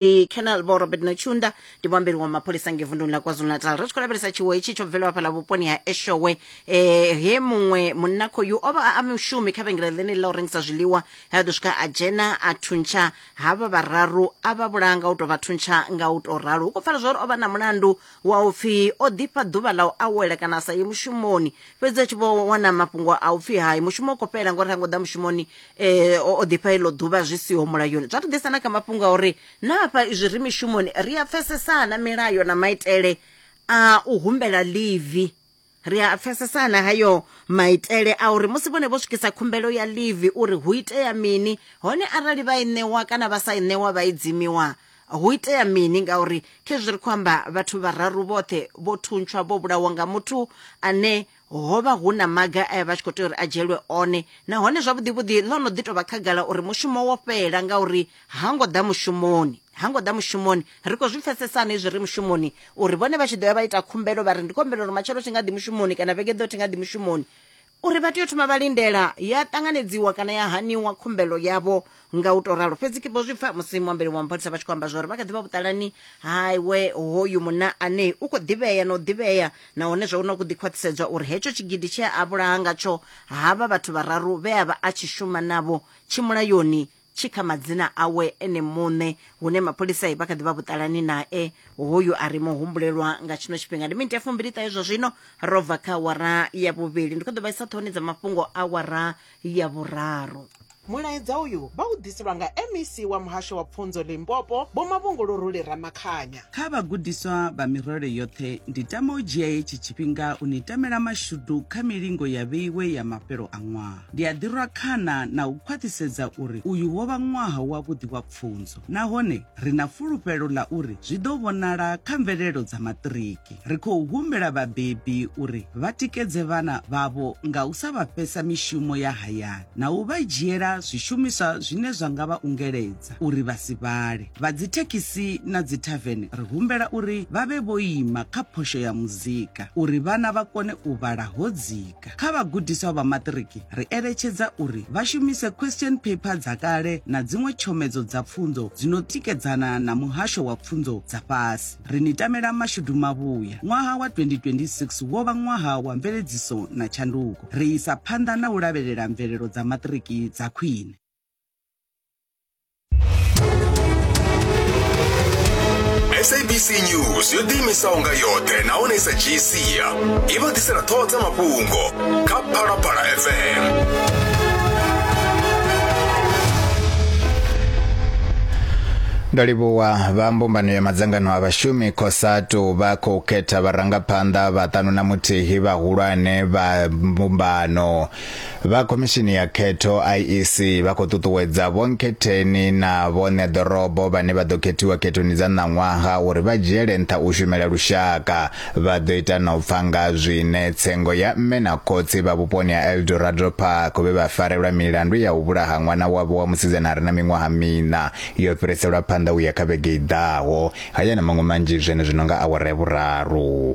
ndi canal vho robert nochunda ndi muambeli wa mapholisa nge vunduni la kwazulu-natal ri tshi khou lavhelesa tshiwo hetshi tsho bvelwa fhala vhuponi ha eshowe eh, he muṅwe munna khoyu o vha a mushumi kha vhengele ḽeneli ḽa u rengisa zwiḽiwa he a ḓo swika a dzhena a thuntsha havha vhararu a vha vhulaya nga u tou vha thuntsha nga u tou ralo hu khou pfala zwa uri o vha na mulandu wa u pfi o ḓifha ḓuvha ḽa u awela kana a sa ye mushumoni fhedzi a tshi vho wana mafhungo a u pfi hai mushumo u khou fhela ngori ha ngo ḓa mushumoni um o ḓifha iḽo ḓuvha zwi siho mulayoni zwa ri ḓisa na kha mafhungo a uri na hafha izwi ri mishumoni ri a pfesesana milayo na maitele a u humbela livi ri a pfesesana hayo maitele a uri musi vhone vho swikisa khumbelo ya livi uri hu itea mini hone arali vha i ṋewa kana vha sa i ṋewa vha i dzimiwa hu itea mini ngauri khezwi ri khou amba vhathu vhararu vhoṱhe vho thuntshwa vho vhulawa nga muthu ane ho vha hu na maga a vha tshi khou tea uri a dzhielwe one nahone zwavhuḓi vhuḓi ḽo no ḓi tou vha khagala uri mushumo wo fhela ngauri ha ngo ḓa mushumoni ha ngo ḓa mushumoni ri khou zwi pfesesa hani izwi ri mushumoni uri vhone vha tshi ḓo ya vha ita khumbelo vha ri ndi khumbelo uri matshelo thi nga ḓi mushumoni kana vhege ḓo thi nga ḓi mushumoni uri vha tea u thoma vha lindela ya ṱanganedziwa kana ya haniwa khumbelo yavho nga u to ralo fhedzi kibo zwi pfa musi muambeli wa mapholisa vha tshi khou amba zwori vha kha ḓivha vhuṱalani haiwe hoyu munna ane u khou ḓivhea na u ḓivhea nahone zwa una ku ḓi khwaṱhisedzwa uri hetsho tshigidi tshea a vhulaha ngatsho havha vhathu vhararu vhe a vha a tshi shuma navho tshimulayoni tshi kha madzina awe ene muṋe hune mapholisa vha kha ḓi vha vhuṱalani nae hoyu a ri muhumbulelwa nga tshino tshifhinga ndi miniti ya fumbili ṱahe zwa zwino ro bva kha awara ya vhuvhili ndi kho ḓo vha isa ṱhohoni dza mafhungo awara ya vhuraru Mulaedza uyu vha u ḓiselwa nga MEC wa Muhasho wa Pfunzo Limpopo, Vho Mavhungulo Ruli Ramakhanya. Kha vhagudiswa vha mirole yoṱhe, ndi tama u dzhia hetshi tshifhinga u ni tamela mashudu kha milingo ya vheiwe ya mafhelo a ṅwaha. Ndi a ḓirwa khana na u khwaṱhisedza uri uyu wo vha ṅwaha wavhuḓi wa pfunzo nahone ri na fulufhelo ḽa uri zwi ḓo vhonala kha mvelelo dza maṱiriki. Ri khou humbela vhabebi uri vha tikedze vhana vhavho nga u sa vha fhesa mishumo ya hayani na u vha dzhiela zwishumiswa zwine zwa nga vha ungeledza uri vha si vhale. Vha dzithekhisi na dzithavene ri humbela uri vha vhe vho ima kha phosho ya muzika uri vhana vha kone u vhala ho dzika. Afrika. Kha vhagudiswa vha maṱiriki, ri eletshedza uri vha shumise question paper dza kale na dziṅwe tshomedzo dza pfunzo dzi no tikedzana na muhasho wa pfunzo dza fhasi. Ri ni tamela mashudu mavhuya. Ṅwaha wa 2026 wo vha ṅwaha wa mveledziso na tshanduko. Ri isa phanḓa na u lavhelela mvelelo dza maṱiriki dza khwine. sabc news yo ḓiimisaho nga yoṱhe nahone i sa dzhii sia i vha ḓisela ṱhoho dza mafhungo kha phalaphala fm ndo livhuwa vha mbumbano ya madzangano a vhashumi cosatu vha khou khetha vharangaphanḓa vhaṱanu na muthihi vhahulwane vha mbumbano Vha khomishini ya khetho IEC vha khou ṱuṱuwedza vhonkhetheni na vhoṋe ḓorobo vhane vha ḓo khethiwa khethoni dza ṋaṅwaha uri vha dzhiele nṱha u shumela lushaka. Vha ḓo ita na u pfa nga zwine tsengo ya mme na khotsi vha vhuponi ha Eldorado Park vhe vha farelwa milandu ya u vhulaha ṅwana wavho wa musidzana a re na miṅwaha miṋa yo fhiriselwa phanḓa u ya kha vhege i ḓaho. Haya na maṅwe manzhi zwenezwino nga awara ya vhuraru.